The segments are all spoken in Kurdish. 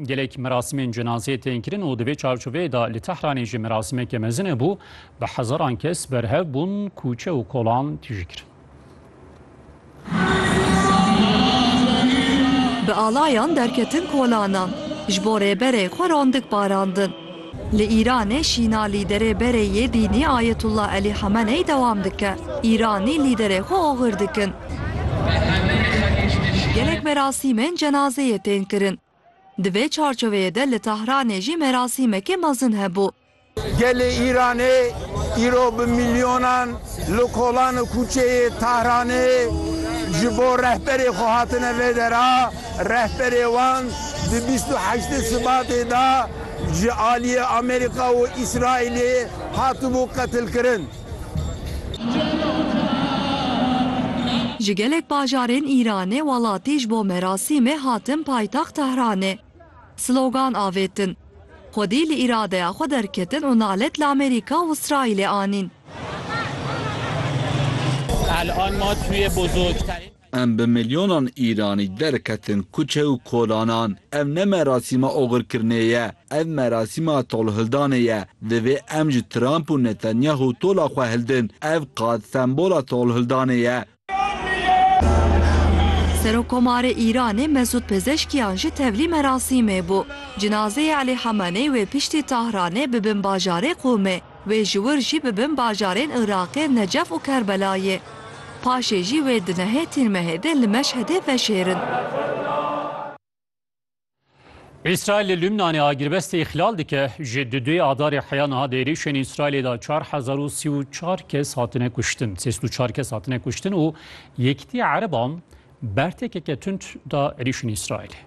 Gelek merasimên cenazeyê tên kirin û di vê çarçoveyê de li Tehranê jî merasimeke mezin hebû, bi hezaran kes berhev bûn, kûçe û kolan tije kirin. Bi alayan derketin kolanan, ji bo Rêberê xwe randik barandin. Li Îranê şîna lîderê berê yê dînî Ayetullah Elî Hemeney dewam dike, Îranî lîderê xwe oxir dikin. Gelek merasîmên cenazeyê tên kirin. Di vê çarçoveyê de li Tahranê jî merasîmekê mezin hebû. Gelê Îranê îro bi milyonan li kolan û kûçeyê Tahranê ji bo rehberê xwe hatine vê dera. Rehberê wan di bîst û heştê Sibatê de ji aliyê Amerîka û Îsraîlê hatibû qetilkirin. Ji gelek bajarên Îranê welatî ji bo merasîmê hatin paytext Tehranê. Slogan avêtin. Xwedî li îradeya xwe derketin û nalet li Amerîka û Îsraîlê anîn. Em bi milyonan Îranî derketin kuçe û kolanan. Ev ne merasîma oxirkirinê ye, ev merasîma tolhildanê ye. Divê em ji Trump û Netanyahu tola xwe hildin. Ev qad sembola tolhildanê ye. Serokkomarê Îranê Mesûd Pezeşkiyan jî tevlî merasîmê bû. Cinazeyê Elî Hemeney wê piştî Tahranê bi bin bajarê Qûmê. Wê ji wir jî bi bin bajarên Iraqê Necef û Kerbelayê. Paşê jî wê di nehê Tîrmehêdê li Meşhedê veşêrin. Îsraîl li Lûbnanê agirbestê îxlal dike, ji du duyê adarê heya niha di êrîşên Îsraîlê de çar hezar û sî û çar kes hatine kuştin sêst û çar kes hatine kuştin û Yekîtîya Ereban Bertêkeke tund da êrîşên Îsraîlê.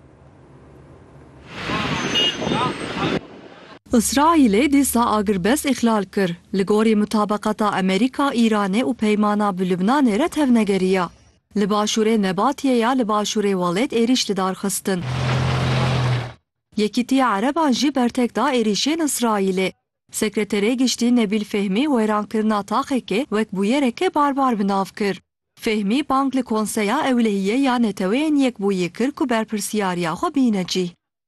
Îsraîlê dîsa agirbest îxlal kir, li gorî mutabeqata Amerîka, Îranê û peymana bi Lubnanê re tevnegeriya. Li başûrê Nebatiyê ya li başûrê welêt êrîş li dar xistin. Yekîtiya Ereban jî bertek da êrîşên Îsraîlê. Sekreterê Giştî Nebîl Fehmî wêrankirina taxekê wek bûyereke barbar bi nav kir. Fehmî bang li Konseya Ewlehiyê ya Neteweyên Yekbûyî kir ku berpirsyariya xwe bîne cî.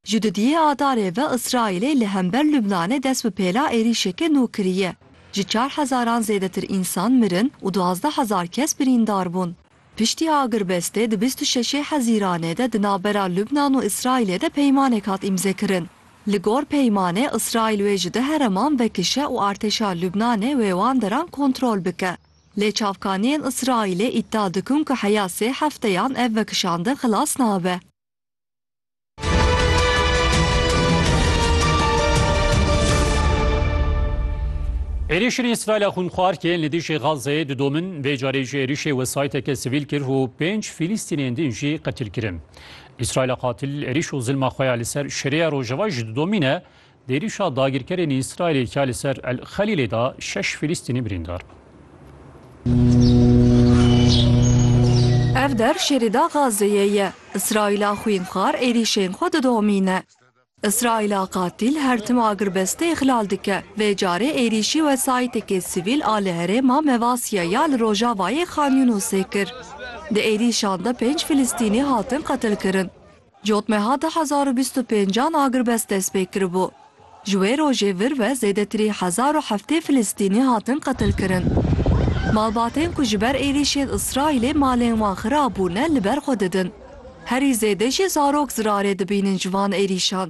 Ji dudiyê Adarê ve Îsraîlê li hember Lubnanê dest bi pêla êrîşeke nû kiriye. Ji çar hezaran zêdetir însan mirin û duwazdeh hezar kes birîndar bûn. Piştî agirbestê di bîst û şeşê Hezîranê de di navbera Lubnan û Îsraîlê de peymanek hat îmzekirin. Li gor peymanê Îsraîl wê ji du hereman vekişe û artêşa Lubnanê wê wan deran kontrol bike. Lê çavkaniyên Îsraîlê îdia dikin ku heya sê hefteyan ev vekişandin xilas nabe. Êrîşên Îsraîla xûnxwar ku yên li dijî Gazeyê didomin, vê carê jî êrîşê wesayîteke sivîl kir û pênc Fîlîstînên din jî qetil kirin. Îsraîla qatil êrîş û zilma xwe ya li ser Şêriya Rojava jî didomîne, Êrişa dagirkerên Îsraîlê ya li ser El Xelîlê da şeş Filîstînî birîndar bûn. Ev der şêrê da Gazeyê ye. Îsraîla xwînxwar êrîşên xwe didomîne. Îsraîla qatîl her tim agirbestê îxlal dike. Vê carê êrîşî wesayîtekê sivîl a li herêma Mevasîya ya li rojavayê Xan Yûnusê kir. Di êrîşan de pênc Filîstînî hatin qetilkirin. Cotmeha du hezar û bîst û pênc an agirbest dest pê kiribû. Ji wê rojê vir ve zêdetirî hezar û heftê Filistînî hatin qetilkirin. Malbatên ku ji ber êrîşên Îsraîlê malên wan xirab bûne li ber xwe didin. Herî zêde jî zarok zirarê dibînin ji van êrîşan.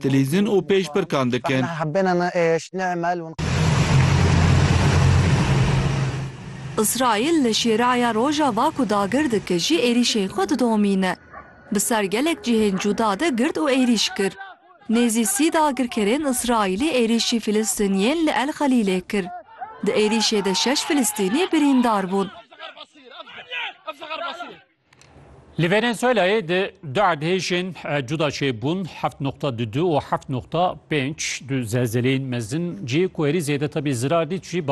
dilîzin û pêşbirkan dikin. Îsraîl li Şêraya Rojava ku dagir dike jî êrîşên xwe didomîne. Bi ser gelek cihên cuda de girt û êrîş kir. Nêzî sî dagirkerên Îsraîlî êrîşî Filistîniyên li El Xelîlê kir. Di êrîşê de şeş Filistînî birîndar bûn. Li Venezuelayê di du erdhêjên cuda çêbûn heft noqta du û heft noqta pênc du zelzeleyên mezin cihê ku herî zêde tebî zirar dît jî